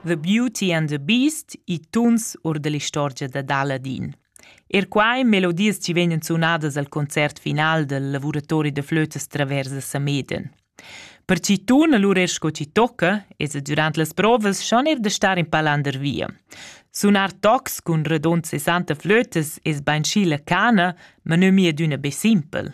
The Beauty and the Beast, i tuns or dell'istorgia dad Aladin. Er quai melodias ci vegnan sunadas al concert final del lavuratori de flötes travers a Sameden. Per ci tun allura er sco ci tocca, es e durant las provas schon er de star in palander via. Sunar tocs cun redond 60 flötes es bainschi la cana, ma nö mia d'üna be simpel.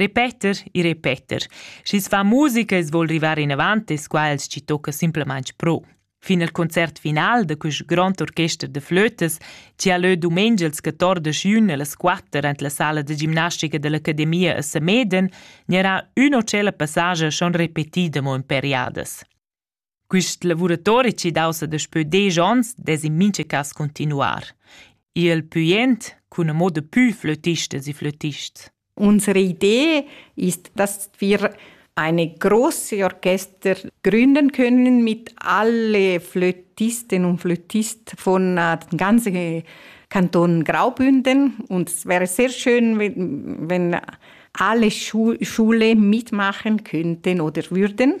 Repeter e repeter. Schi's fa musica e's voul rivar inavant es qua els chi tocca simplamaing pro. Fin al concert final da quist grond orchester da flötas, chi ha lö dumengia ils 14 jun allas 4 ant la sala da gimnastica dell'Academia a Sameden, gnarà üna o tschella passage schon repetida mo in periadas. Quist lavuratori chi daussa daspö desch ons dess in mincha cas cuntinuar. Il pü jent cun amo dapü flötistas e flötists. Unsere Idee ist, dass wir eine große Orchester gründen können mit alle Flötisten und Flötisten von äh, dem ganzen Kanton Graubünden. Und es wäre sehr schön, wenn, wenn alle Schule mitmachen könnten oder würden.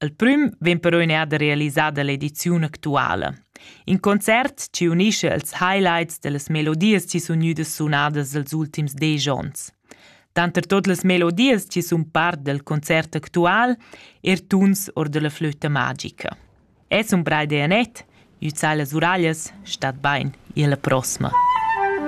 El prüm vegn però eir realisada l'ediziun actuala. In concert chi unischa ils highlights da las melodias chi sun gnüdas sunadas els ultims desch ons. Tanter tot las melodias chi sun part del concert actual er tuns or da la flöta magica. Es un brai de Anett, üzai las uraglias, stat bain, e alla prossima.